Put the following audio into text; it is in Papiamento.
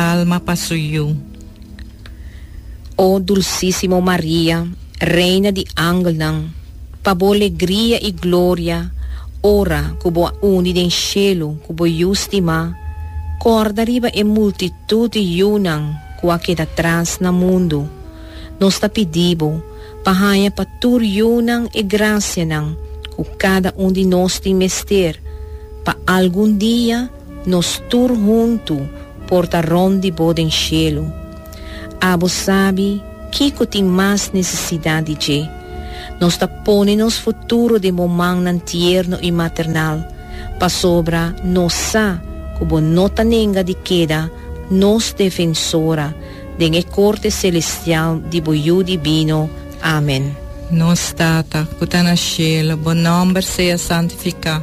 alma pa su yu. O dulsísimo Maria, Reina di angelnan, pa bo legria i gloria ora ku bo a uni den shelu ku bo Yu stimá, kòrda riba e multitut di yunan ku a keda tras na mundu. Nos ta pidi bo pa haña pa tur yunan e grasianan ku kada un di nos tin mester pa algun dia Nos tur huntu por ta rond di Bo den shelu. Abo sabi kico tin mas necesidad di dje. Nos ta pone nos futuro den Bo mannan tierno y maternal, pasobra nos sa cu Bo no ta nenga di keda nos Defensora den e corte celestial di Bo Yu Divino. Amen. Nos Tata, cu ta na shelu, Bo nomber sea santifica.